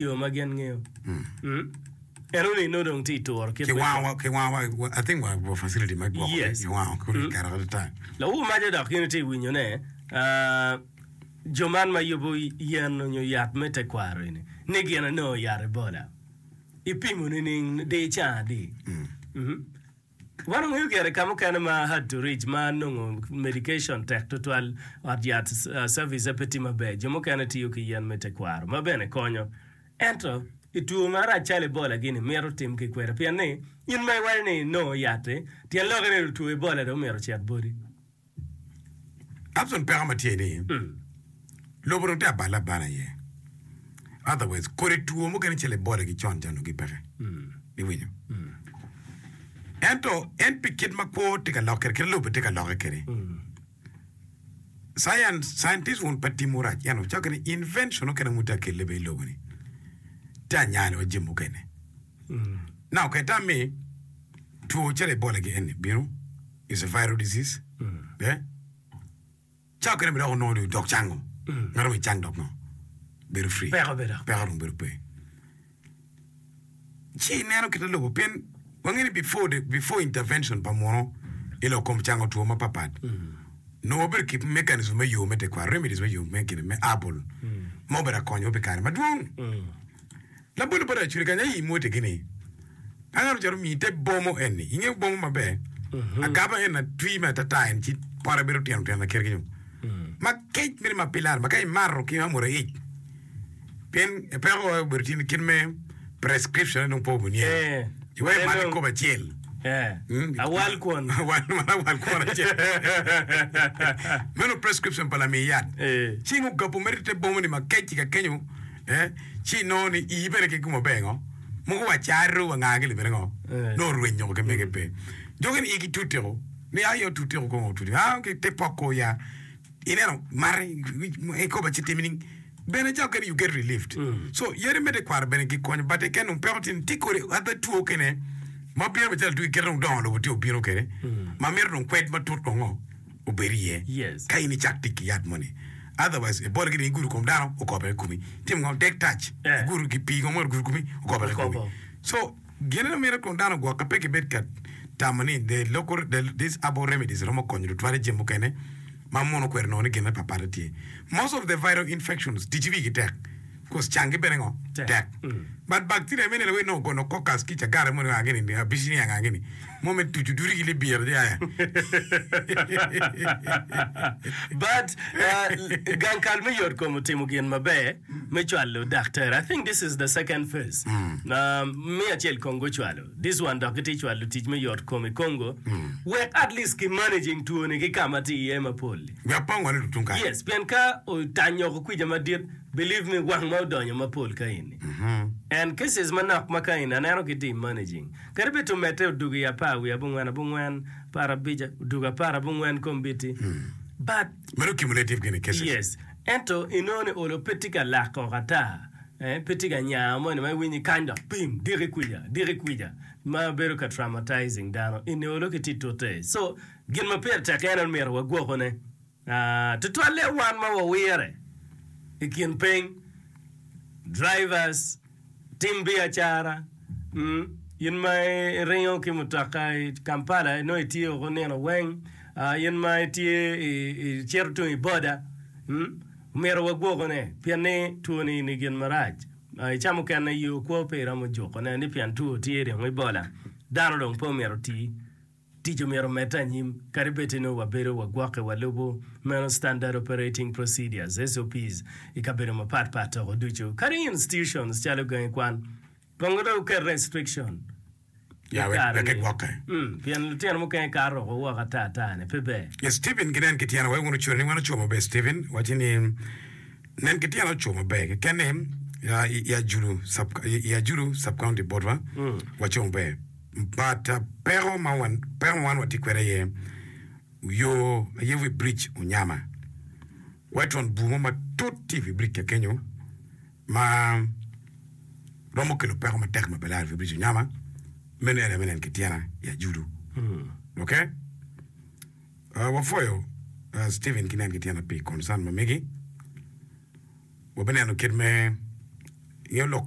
yo ma gin ngeyo. En onongo nongo dong tye i turo kit me Kiwango wa, kiwango wa, wa- I think wa wa facility me gwoko Yes. kiwango kulu i kare adada. Lawu maco dok in itye winyo ne ah, jo man ma yubo yen onyo yat me tekwaro eni ni gin anongo yat ebola ipimo nining di caa adi? Mhm. Wan wangeyo gire i ka mukene ma hard to reach ma nongo medication tek tutwal, ot yat service-e pe tye maber, jo mukene tiyo ki yen me tekwaro ma bene konyo. Ento, i two marac calo Ebola-gini, mito tim ki kwede pien ni in ma iwaco ni inongo yat-ti, tyen lokke ni otwo Ebola dong myero ocit boti. Abson peko ma tye ni lobo dong tye abale abala aye otherwise kodi two mukene calo ebola ki con ca onongo gipeke iwinyo ento en pi kit ma kwo tye ka lok kwede kit lobo tye ka lokke kwede science scientist wun pe timo rac ento wucoyo gin ni invention mukene wun tye ka kelle bene ilobo ni tye anyal wa jami mukene now ka itam ni two calo ebola gi eni bino is a viral disease be cawa kene bene dok onongo ni dok cang o ngato onongo cang dok nongo bedo free Peko be dok. peko dong bedo pe ci ineno kite lobo pien wangeyo ni before the, before intervention pa muno i lok kom cango two mapapat nongo wabedo ki mechanism me yo me tekwaro remedies me yo me kine me herbal ma obedo ka konyowa pi kare madwong Labolo pa Racuri kany aye imwotegi ni, Angaro calo omiyi te bomo enni, ingeyo bomo maber, agaba en atwi me atata en ci pote bedo tino tino laker kenyo. Ma kec mene ma pilar ma ka imato ki amura ic, pien peko aye obedo tye ni kit me prescription aye dong po obedo niye. Eh, Iweko en mate dong- kobo acel. Eh, Mm. awal kwon. Awal man awal kwon acel. Meno prescription pa lami yat. Eh. Cing ogapu mere te bomo ni ma kec i ka kenyo ci inongo ni ii bene keken wa ber ngo mogo wa caro wa ngagi libene ngo no orwenyo ko kemege pe doki ni igi tute ko ni ayi otute ko kongo otute ah okay te poko ya ineno mare ikoba ci timi ning bene ca okene you get relieved so yadi me tekwaro bene gikonyo but eken dong peko tye ni tye kodi adha two kene ma bino macalo two kite dong dongo lobo tye obino kede ma mito dong kwed matut kongo obed iye ka in icak tic ki yat moni. Otherwise ibole gire igudo kom dano okobere i komi. Tim ngo? Dek tac igudo gi pii ngo ma ogudo i komi okobere i komi. So gin ma mito twon dano ogwokke pe kibed ka tamo ni the local these herbal remedies romo konyo lutwale jami mukene ma mono okwero nongo ni gin me pat pat aye tye. Most of the viral infections ticci wigi tek. Kos can ki bene ngo tek but bacteria mene la wee nongo gono cocus ki cagara moni anga gini abicinia anga gini mo me tucu duri ki libira je aya. But uh, gang kal me yot kom otimo gin maber me cwalo daktere. I think this is the second phase. Uh, me acel Congo ocwalo. This one dok gitye cwalo tic me yot kom i Congo. Wek at least ki managing two ni ki kama tye iye mapol. Wek pe ongole dutung kany. Yes, pien ka otany oko kwija madit Believe me gwang ma odonyo mapol kaeni and cases manok ma kaeni aneno ki team managing kadi bed to mette odugo i apar wiye abongwen abongwen apar abic odugo apar abongwen kombiti but Meno cumulative gini cases. Yes. Ento inongo ni olo pe tye ka lak koko ata. Eh, pe tye ka nyao moni ma iwinyo i kany dok pim diki kwica, diki kwica ma bedo ka traumatizing dano. Eni olo ki tye tute. So, gin ma pire tek en en myero wagwokone. Tutwalle wan ma wawire i kin peny, drivers, tim biacara, in ma iringo ki mutoka i Kampala nongo itye woko nino weng, in ma itye icito tung i boda, omyero wagwokone pien ni two ni ni gin marac. I ca mukene yoo kwo pe iromo jukone ni pien two tye dong ibola, dano dong pe omyero oti. Tic omyero omedde anyim kadi bed nongo wabedo wagwokke walubo meno Standard Operating Procedures, SOPs, i kabedo mapat pat toko ducu. Kadi institutions calo gangi kwan kongo dong oket restriction Ya, wek kare wek ni, egwokke. mm, pien lutino mukene kato woko woko ata ata ni pe ber. Yes, Steven ginen ki tyene wek wun ocuto ni wan ocwo maber Steven waci ni Nen ki tyen ocoo maber kekene i Ajulu Sub-County botwa, wacoo maber. But peko ma wan watye kwede aye yo aye wi bridge onyama. Wetron bur mo matut tye i wi bridge kek kenyo ma romo kelo peko matek ma pe laro i wi bridge onyama. Meno aye nen ki tyena i Ajulu. Ok. Wapwoyo Stephen ki nen ki tyene pi concern ma megi. Wabineno kit me ngeyo lok kom.